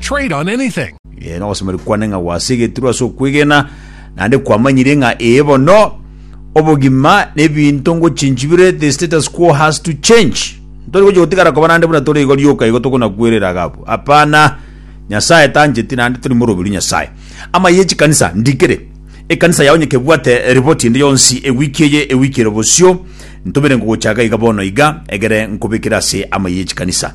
Trade on anything. Ee, nogosemeria kwane ng'a gwasegetirwe ase okwegena, naende kwamanyire ng'a ee bono, obogima na ebinto ngochinchi bire, the status quo has to change. Ntori gochia gotigara koba naende buna tore igo rioka igo tokonakwerera iga abwo. Hapana, Nyasae tancheti naende tori moroberu Nyasae. Amaye ye chikanisa ndikere. Ekanisa yao onye kebwate ripoti ende yonsi ewiki eye, ewiki ere bosio, ntomere ngogocha iga iga bono iga, egere nkobekere ase amaye ye chikanisa.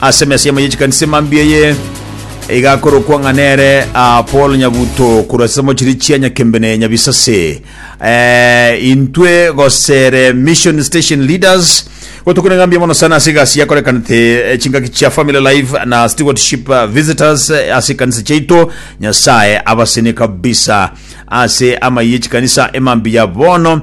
Ase emesiemo ye chikanisa emambia eye igakorokwa ng'a nere ah, Paul Nyabuto korwa ase mochiri chia Nyakembene Nyabisase. Eh, intwe gosere Mission Station Leaders gotukuna ng'a mbiya mono sana ase egasi yakorekanete eh, chingaki chia Family Life na Stewardship eh, Visitors eh, ase ekanisa chiaito. Nyasaye abasene kabisa ase amaiye chikanisa emambiya bono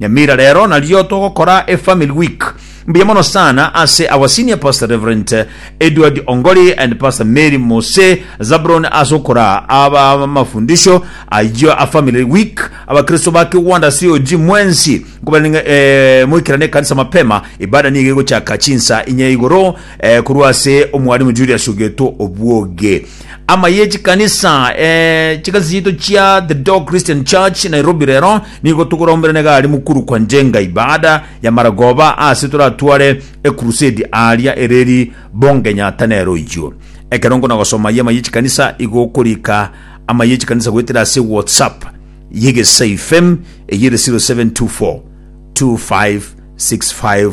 Nyamira rero nario togokora e family week. Mbuya mono sana ase our senior pastor Reverend Edward Ongori and pastor Mary Mose Zabron ase okora aba amafundisho ayio a family week. Abakristo ba Kiwanda COG mwensi nkobarenge eh, moikerane ekanisa mapema. Ibada nigo egochaka chinsa inye igoro eh, korwa ase omwalimu Julius Ogeto Obwoge. ama ye chikanisa eh, chikanisa chiito chia the dog christian church nairobi rero nigo togorombera negari mukuru kwa njenga ibada ya maragoba ase toratware ekurusedi aria ereri bongenyata nero ichio ekero nkona gosoma ye ama ye chikanisa igo okorika ama ye chikanisa goetera ase whatsapp yegesai fm eyere 0724 2565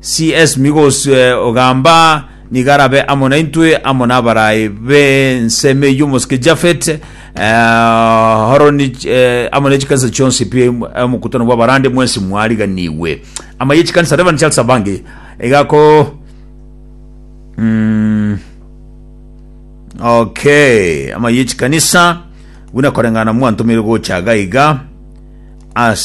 CS Migosi ogamba nigo arabe amo naintwe, amo n'abaraai b'ensemo eyio omosike Jafet, eh, Horoni, eh, amo ne chikanisa chionsi pi omokutano bw'abarande mwensi mwariganigwe. Ama ye chikanisa Reverend Charles Abange egako mm, okay ama ye chikanisa buna koreng'ana mwantomire gocha gaiga ase